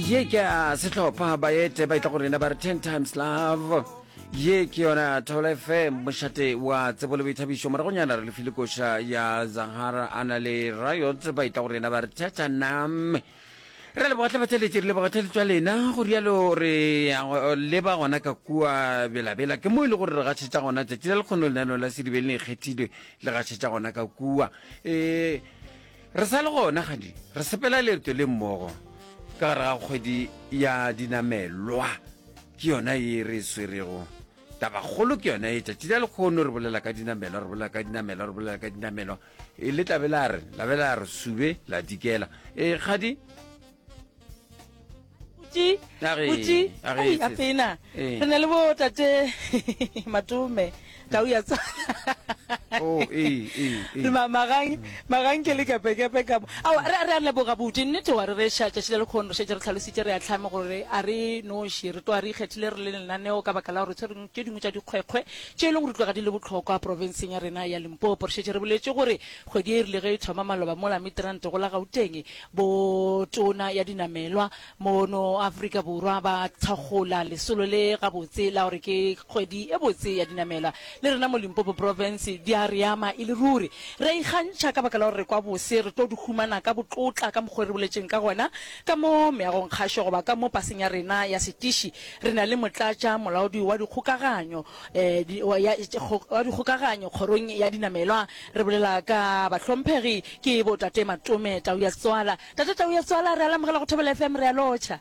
ye ke a sehlopha baete ba itla go rena ba re ten times love ye ke yona thobela fm mošate wa tsebo le boithabišo moragonyana re lefile koša ya zahara a na le riot ba itla go rena ba re tatanam re leboga tlabatšaletše re leboga tšhaletšwa lena go rialo re leba gona ka kua belabela ke mo e le gore re gašetša gona tšatši la lekgono lenaneo la sedibeleng e kgethilwe le gašetša gona ka kua um Re sa le gona gadi re sepela leeto le mmogo ka gare ga kgwedi ya dinamelwa ke yona ye re e swerego tabakgolo ke yona e tšatši la lekgono re bolela ka dinamelwa re bolela ka dinamelwa re bolela ka dinamelwa e le tlabe la re labe la re sube la dikela e kgadi Uti, A re- uti, a re ai, etse- a pena. Eh. Re na le bo tate Matome, tau ya tsa. Oh, ee, ee, ee. Le ma- magang magang ke le kepekepe ka mo ao re re a leboga buti nnete wa re re ša tšatši le lekgono re šetse re tlhalositše re a tlhame gore a re noši re tloa re ikgethile re le lenaneo ka baka la gore tshwereng tše dingwe tša dikgwekgwe tše e leng gore di tloga di le bohlokwa profenseng ya rena ya limpopo re šetse re boletše gore kgwedi e rile ge e thoma maloba mola midrand go la gauteng Bo Tona ya Dinamelwa mono Afrika Borwa ba thakgola lesolo le gabotse la gore ke kgwedi e botse ya dinamelwa. Le rena mo Limpopo Province di a re ama e le ruri. Re a ikgantšha ka baka la gore re kwa bose, re tlo di humana ka botlotla ka mokgwa o re boletšeng ka gona. Ka mo meagongkgašo goba ka mo paseng ya rena ya setiši re na le motlatša molaodi wa dikgokaganyo ya dikgokaganyo kgorong ya dinamelwa re bolela ka bahlomphegi ke bo tate matome tau ya setswala tate tau ya setswala re alamogela go thobela fm re a lotšha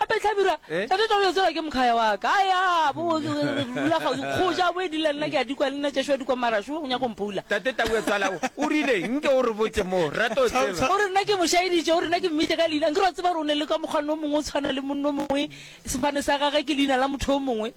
Gape hlabirwa, tate tla go yo tseba ke mokgaya wa ka. A ya, bo, re dula kgauswi. Kgoja a bo edile le nna, ke a dikwa le nna, Ješo a dikwa mara šo, o nyaka go mphoula. Tate Taue, tswala, o, o rile, nke o re botše mo, re rata go tseba. O re nna ke mo šaeditše, o re nna ke mmitše ka leina. Nke re wa tseba gore o ne le ka mokgwa no mongwe o tshwana le monna o mongwe, sefane sa gage ke leina la motho yo mongwe.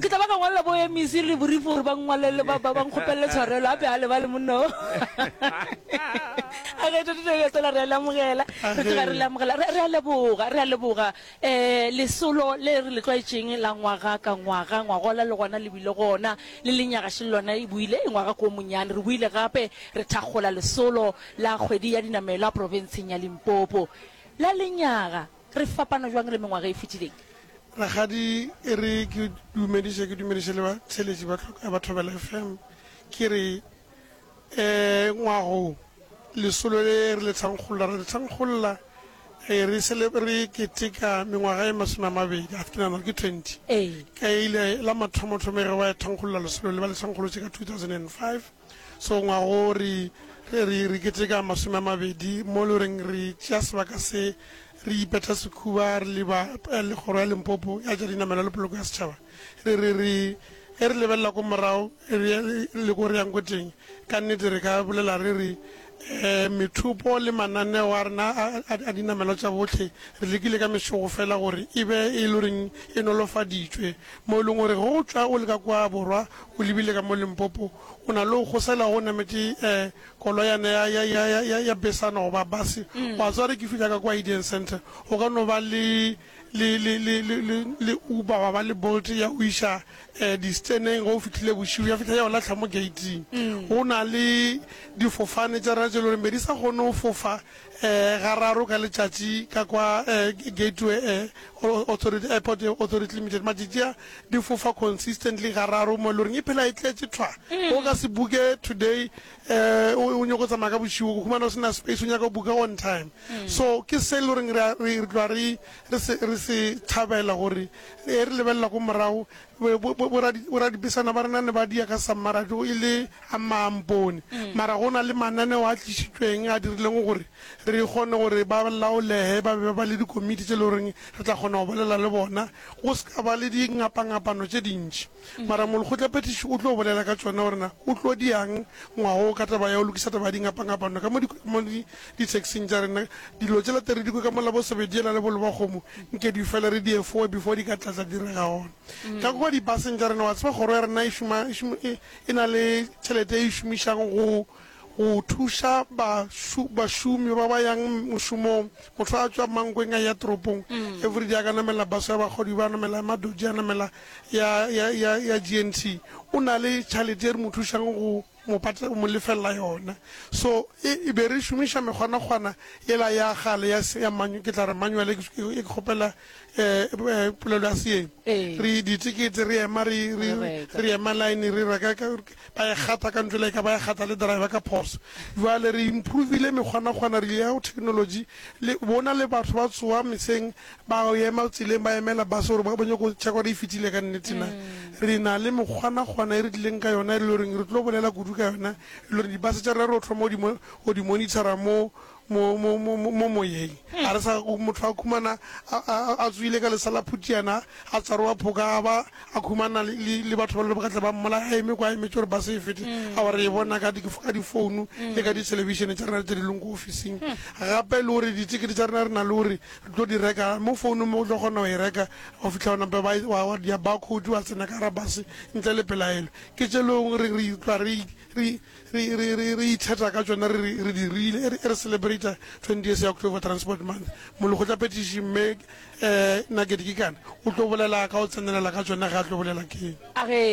Ke tla ba ka ngwalela bo MEC le borif gore ba ngwalele ba ba nkgopelele tshwarelo a be a lebale monna o. A ge tota re tsela re le amogela re tla re le amogela re a leboga re a leboga eh lesolo le re le tlwaetšeng la ngwaga ka ngwaga ngwagola le gona le bile gona le lenyaga se lona e buile ngwaga ko monyane re buile gape re thakgola lesolo la kgwedi ya dinamelwa profenseng ya Limpopo la lenyaga Re fapana bjang le mengwaga e fetileng? Rakgadi e re ke dumediše, ke dumediše le batheeletši ba tlhoko ya Bathobela FM. Ke re um ngwago lesolo le re le thankgolola, re le thankgolola re re cele-, re keteka mengwaga e masome a mabedi, a ke nagana gore ke twenty, Ee. ka e ile la mathomothomo e re ba e thankgolola lesolo le, ba le thankgolotše ka two thousand and five. So ngwaga wo re, re, re, re keteka masome a mabedi mo le reng re tšea sebaka se, re ipeta sekhuba, re le ba eh, le kgoro ya Limpopo ya tša dinamelwa le poloko ya setšhaba. Re, re, re, ge re lebelela ko morago, re, re le ko re yang ko teng, ka nnete re ka bolela re re, Methopo le mananeo a rena a dinamelwa tša bohle re lekile ka mešogo fela gore e be e le reng e nolofaditšwe, mo e leng gore ge o tšwa o le ka kwa borwa o lebile ka mo Limpopo o na le go kgosela go nametše koloyana ya besana goba base, wa tseba ge ke fihla ka kwa Idian Centre go ka no ba le le, le, le, le, le, le Uber ba ba le Bolt ya go iša um disteneng ge o fihlile bošigo ya fihla ya o latlha mo gating. Mm. Go na le difofane tša rena tše e le gore be di sa kgone go fofa um gararo ka letšatši ka kwa um gateway um authority airport authority limited matšatši a di fofa consistently gararo mo e le goreng e phela e tletše thwa mm. o ka se buke today um o nyaka go tsamaya ka bošego go humana o sena space o nyaka buka on time mm. so ke se le goreng re tlwa re re se thabela gore e re lebelela ko morago boradipesana ba rena ne ba dia ka sammara jo e le a maampone mm. mara go na le mananeo a tlisitsweng a dirileng gore re kgone gore ba laolege ba be ba le dikomiti tse e le goreng re tla kgona go bolela le bona go se ka ba le dingapangapano tse dintši Mara molekgotlaphethiši o tlo bolela ka tšona gore na o tlo diang ngwaga wo ka taba ya go lokiša taba ya dingapangapano ka mo ditaxing tša rena. Dilo tšela te re di kwe ka mola, bo Sebediela le bo Lebakgomo, nke di fele re di efoe before di ka tlatla di re ga gona ka kua dibaseng tša rena. Wa tseba kgoro ya rena e na le tšhelete e e šomišang go Go thuša bašomi ba ba yang mošomong, motho a tšwa Mankweng a eya toropong, everyday a ka namela bus ya bagodi, ba namela ya Madoji, a namela ya GNT, o na le tšhalete e re mo thušang go mo lefelela yona. So e be re šomiša mekgwanakgwana yela ya kgale ya ke tla re manual, e ke kgopela polelo ya seeng, re ditekete re ema re ema line re reka. Ba e kgatha ka ntle le eka ba e kgatha le driver ka phoso. Bjale re improvile mekgwanakgwana, re ile ya go technology. Le bona le batho ba tsoga meseng ba go ema tseleng ba emela bus gore ba bonyoko check gore e fitile ka nnete na. Re na le mekgwanakgwana e re tlileng ka yona e le goreng re tlo bolela kudu ka yona e le gore di bus tša rena re tlo thoma go di monitora mo mo, mo, mo, mo, mo moyeng. A re sa go motho a khumana a, a, a tswile ka lesa la phutiana, a tsarowa phoka, a ba a khumana le, le, le batho ba le ba tla ba mmola a eme kwa emetše gore ba se e fete. A wa re e bona ka, di, ka difounu le ka dithelebishene tša rena tše di leng ko ofising. Gape le gore ditekete tša rena re na le gore re tlo di reka mo founung mo o tlo kgona go e reka go fitlha ona mpe ba, e- wa, wa dia barcode wa tsena ka gara base ntle le pelaelo. Ke tše leng gore re, re itlwa re, re, Re, re, re, re ithata ka tšona, re, re, re di rile, e re, e re celebrata 20th ya October Transport Month. Molekgotlaphethiši, Mme eh, Nugget Gikan, o tlo bolela ka go tsenelela ka tšona ge a tlo bolela ke. A re,